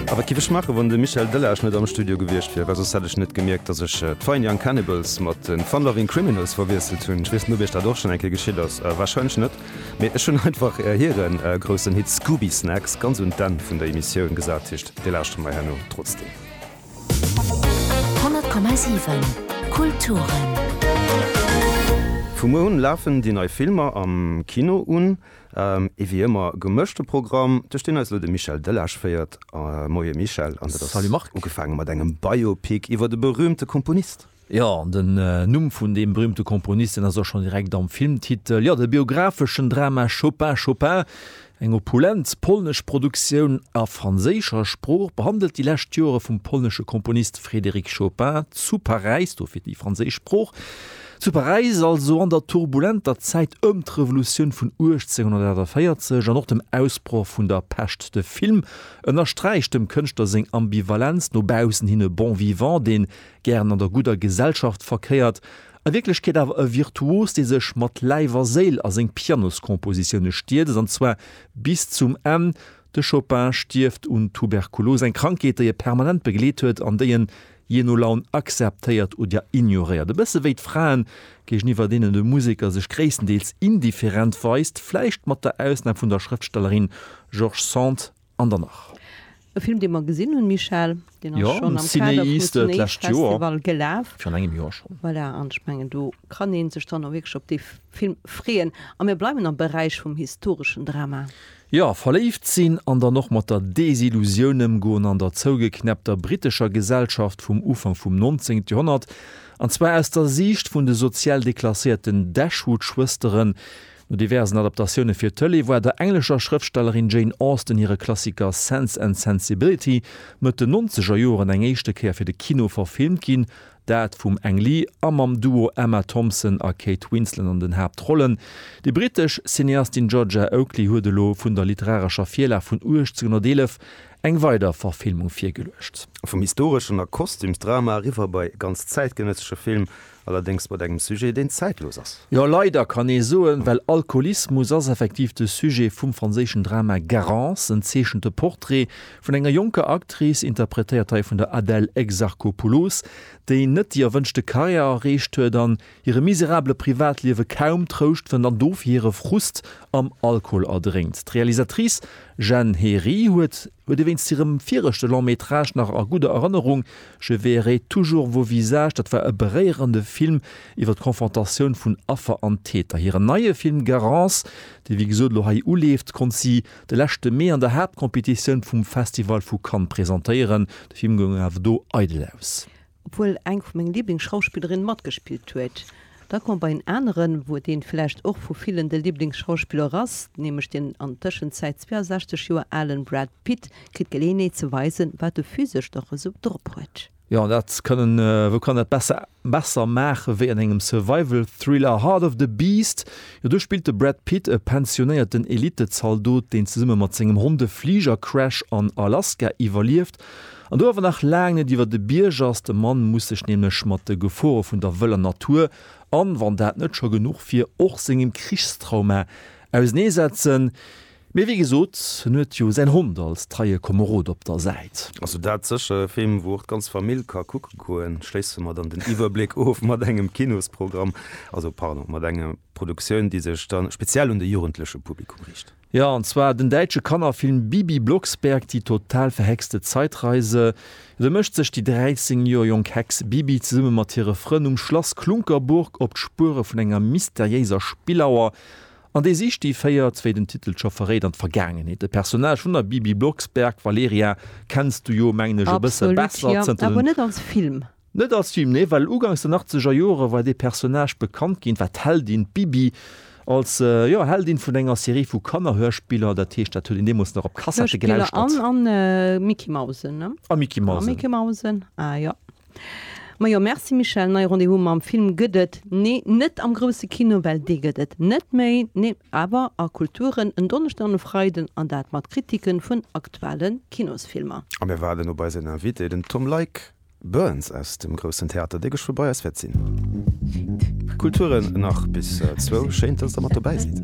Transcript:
A wat giff ech maachen, wann de Michel Delage net am Studio gewiescht wier? Well soss hätt ech net gemierkt, datt ech d'Fine Young Cannibals mat de Fun Loving Criminals verwiesselt hunn. Ech weess net, ob iech dat och schonn eng Kéier geschitt ass. Warscheinlech net. Mee ech hunn einfach hire groussen Hit Scooby Snacks ganz un d'Enn vun der Emissioun gesat. Heescht, dir lauschtert mer herno trotzdeem. 100,7 Kulturen. Vu muer un lafen déi nei Filmer am Kino un. Et wéi ëmmer gemëschte Programm, duerch deen eis elo de Michel Delage féiert. Moie Michel, an dat ass ugefaange mat engem Biopic iwwer de berüümte Komponist. Jo, an den Numm vun deem berüümte Komponist, deen ass och schonn direkt am Filmtitel. Jo, de biographeschen Drama Chopin, Chopin, eng opulent polnesch Produktioun a franséischer Sprooch, behandelt déi lescht Jore vum polnesche Komponist Frédéric Chopin zu Paräis, dofir déi franséisch Sprooch. Zu Paräis, also an der turbulenter Zäit ëm d'Revolutioun vun 1848 an och dem Ausbroch vun der Peste, de Film ënnersträicht dem Kënschtler seng Ambivalenz, no baussen hin e Bon vivant, dee gären an der gudder Gesellschaft verkéiert, a Wierklechkeet awer e Virtuos, dee sech mat Läif a Séil a seng Pianoskompositioune stierzt, an zwar bis zum Enn. De Chopin stierft un Tuberkulos, eng Krankheet, déi e permanent begleet huet an déi en Jee no Laun akzeptéiert oder ignoréiert. E bësse wéi d'Fraen, géigeniwwer deenen de Museker sech gréisstendeels indifferent weist, vläicht mat der Ausnam vun der Schrëftstellerin George Sand an der nach. E Film, dee mer gesinn hunn, Michèle. Deen ass schonn am Kader vum Cinéistes-Festival gelaf. Virun engem Joer schonn. Voilà, an ech mengen, do kann ee sech dann och wierklech op dee Film freeën. A mir bleiwen am Beräich vum historeschen Drama. Jo, verléift sinn an dann och mat der Desillusioun ëmgoen an der zougeknäppter brittescher Gesellschaft vum Ufank vum 19. Joerhonnert, an zwar aus der Siicht vun de sozial deklasséierten Dashwood-Schwësteren. No diversen Adaptatioune fir d'Tëlee war der englescher Schrëftstellerin Jane Austen hire Klassiker Sense and Sensibility Mëtt den Nonzegerjoren eng éischte Kéier fir de Kino verfilmt ginn, Dat vum Ang Lee a mam Duo Emma Thompson a Kate Winslet an den Haaptrollen. Déi brittesch Cineastin Georgia Oakley huet elo vun der literarescher Virlag vun 1811 eng weider Verfilmung virgeluecht. Vum historeschen a Kostümsdrama eriwwer bei e ganz zäitgenëssesche Film, allerdéngs mat engem Sujet, deen zäitlos ass. Jo, leider kann ee soen, well Alkoholismus ass effektiv de Sujet vum franséischen Drama Garance, en zeechente Portrait Vun enger jonker Actrice, interpretéiert hei vun der Adèle Exarchopoulos, déi net déi erwënschte Karriär erreecht huet an hirem miserabele Privatliewe kaum Trouscht fënnt an dofir hire Frust am Alkohol erdrénkt. D'Realisatrice Jeanne Héry huet huet ee wéinst hirem viregte Long Métrage nach a gudder Erënnerung, Je verrai toujours vos visages, dat war e beréierende Film iwwer d'Confrontatioun vun Affer an Täter. Hiren neie Film Garance, dee wéi gesot elo hei uleeft, konnt si de leschte Mee an der Haaptcompetitioun vum Festival vu Cannes presentéieren. De Film goung awer do eidel aus. Obwuel eng vu menge Liblingsschauspillerinne matgespillt huet, da koum bei en aneren, wou deen vläicht och vu villen de Liblingsschauspiller ass, nämlech deen an Tëschenzäit 62 Joer alen Brad Pitt kritt d'Geleeënheet ze weisen, wat e physesch dach esou drop huet. Jo, an dat kënnen, wou kann dat besser besser maachen wéi an engem Survival Thriller Heart of the Beast. Jo, do spillt de Brad Pitt e pensionéierten Elittezaldot, deen zesumme mat sengem Hond e Fligercrash an Alaska iwwerlieft. An do awer nach laang net iwwer de Bierg ass. De Mann muss sech nämlech mat de Gefore vun der wëller Natur an, wann dat net scho genuch wier, och sengem Krichstrauma ausenee setzen. Mee wéi gesot, en huet jo säin Hond als treie Komerod op der Säit. Also dat sécher e Film wou och d'ganz Famill ka kucke goen. Schléisse mer dann den Iwwerbléck of mat engem Kinosprogramm, also pardon, mat enger Produktioun déi sech dann speziell un de jugendleche Publikum riicht. Jo, an zwar den däitsche Kannerfilm Bibi Blocksberg, die total verhexte Zeitreise. Esou mécht sech déi 13 Joer jonk Hex Bibi zesumme mat hire Frënn um Schlass Klunkerburg op d'Spuere vun enger mysteriéiser Spillauer. An déi Sich déi féiert, wéi den Titel scho verréit, an d'Vergaangenheet. De Personnage vun der Bibi Blocksberg, Valeria, kenns du jo, mengen ech, e bësse besser zënter den. Net als Film, nee, well ugangs den achtzeger Jore war dee Personnage bekannt ginn, war d'Heldin, d'Bibi, als, jo, Heldin vun enger Serie vu Kannerhörspiller. Dat heescht, dat huet een deemools nach op Kassette gelauschtert. Hörspiller an Micky Mausen, ne? A Micky Mausen. A Micky Mausen, ah jo. Majo merci Michèle, nei Rendez-vous mam Film gëtt et nee net am grousse Kino well dee gëtt et net méi nee awer a Kulturen en Donneschden an e Freiden an dat mat Kritiken vun aktuelle Kinosfilmer. A mir waarden op eisen Invité, den Tom Leick Burns aus dem Groussen Theater, dee gech frou bei eis wäert sinn. Kulturen nach bis zwou, schéin dass der mat dobäi sidd.